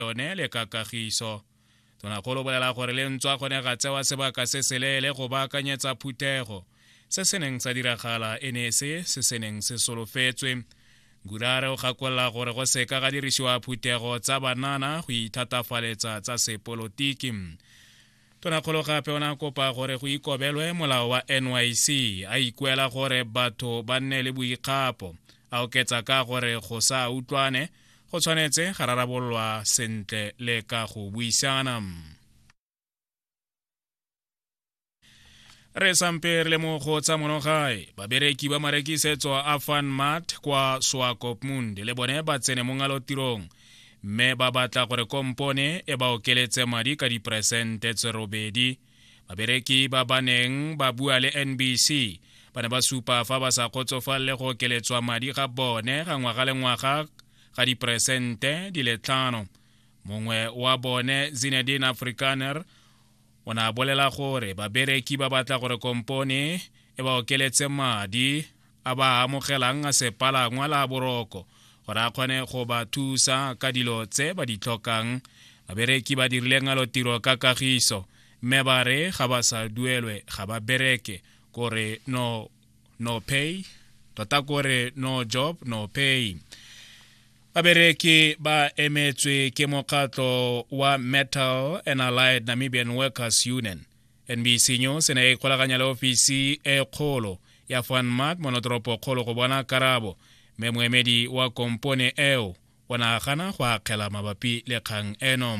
yone le ka kagiso tonakgolo bolela gore le ntswa gone ga tsewa sebaka se seleele go baakanyetsa phuthego se se neng sa diragala e ne se se se neng se solofetswe gurare o gakolela gore go seka ga dirisiwa phuthego tsa banana go ithatafaletsa tsa sepolotiki Tonakgolo gape o ne a kopa gore go ikobelwe molao wa NYC, a ikuela gore batho ba nne le boikgapo, a oketsa ka gore go sa utlwane go tshwanetse ga rarabololwa sentle le ka go buisana. re sampe re le mo go tsa monogae babereki ba marekisetso a fan mart kwa swakopmund le bone ba tsene mo ngalotirong mme ba batla gore kompone e ba okeletse madi ka diperesente tse robedi babereki ba ba neng ba bua le nbc ba ne ba supa fa ba sa kgotsofalele go okeletswa madi ga bone ga ngwaga le ngwaga ga diperesente di le tlhano mongwe wa bone zinedine afrikaner o ne a bolela gore babereki ba batla gore kompone e ba okeletse madi a ba amogelang a sepalangwa la boroko gore a kgone go ba thusa ka dilo tse ba di tlhokang babereki ba dirile ngalotiro ka kagiso mme ba re ga ba sa duelwe ga ba bereke kore no no pay tota kore no job no pay babereki ba emetswe ke mokgatlo wa metal and allied namibian workers union nbc news e ne e ikgolaganya le ofisi e kgolo ya fanmat monotoropo kgolo go bona karabo mme moemedi wa kompone eo o nagana go akgela mabapi le kgang eno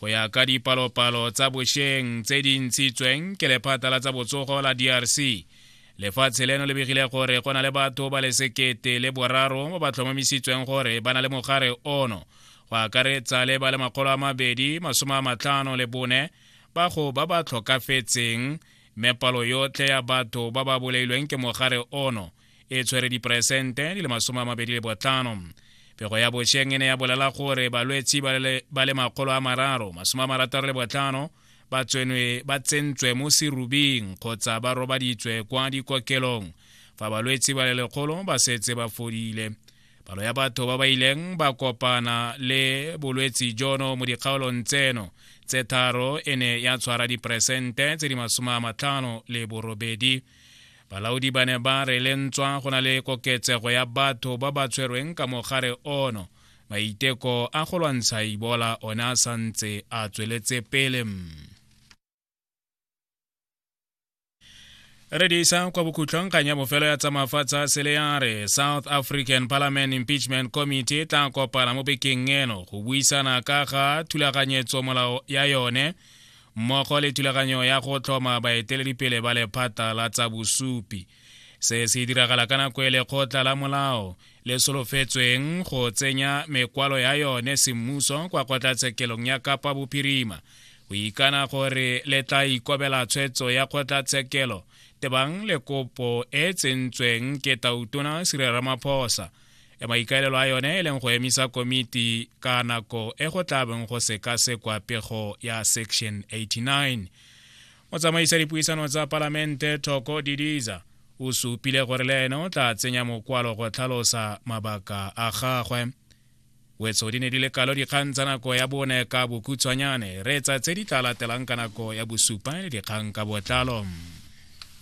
go ya ka dipalopalo tsa bosheng tse di ntshitsweng ke lephata la tsa botsogo la drc lefatshe leno le begile gore go na le batho ba le sekete le boraro ba ba tlhomamisitsweng gore ba na le mogare ono go akaretsa le ba le makgolo a mabedi masome a matlhano le bone ba go ba ba tlhokafetseng mme palo yotlhe ya batho ba ba bolailweng ke mogare ono e tshwere diperesente di le masome a mabedi le botlhano pego ya bošeng e ne ya bolela gore balwetsi ba le makgolo a mararo masome a marataro le botlhano ba tsenwe ba tsentswe mo serubing kgotsa ba robaditswe kwa dikokelong fa balwetsi ba le lekgolo ba setse ba fodile palo ya batho ba ba ileng ba kopana le bolwetsi jono mo dikgaolong tseno tse tharo e ne ya tshwara diperesente tse di masome a matlhano le borobedi Balaodi ba ne ba re le ntswa go na le koketsego ya batho ba ba tshwerweng ka mogare ono, maiteko a go lwantsha Ebola one a sa ntse a tsweletse pele. re di isa kwa bokhutlhong kgang ya bofelo ya tsamafatshe a sele ya re south african parliament impeachment committee e tla kopana mo bekeng eno go buisana ka ga thulaganyetso molao ya yone mmogo le thulaganyo ya go tlhoma baeteledipele ba lephata la tsa bosupi se se diragala ka nako e lekgotla la molao le solofetsweng go tsenya mekwalo ya yone semmuso kwa kgotlatshekelong ya kapa bophirima go ikana gore le tla ikobela tshwetso ya kgotlatshekelo tebang le kopo e tsentsweng ke tautona sirera maphosa ya maikaelelo a yone e leng go emisa komiti ka nako e go tla beng go sekasekwa pego ya section 89 motsamaisa dipuisano tsa palamente thoko didiza o supile gore le ene o tla tsenya mokwalo go tlhalosa mabaka a gagwe wetso di ne di le kalo dikgang tsa nako ya bone ka bokhutshwanyane reetsa tse di tla latelang ka nako ya bosupa le dikgang ka botlalo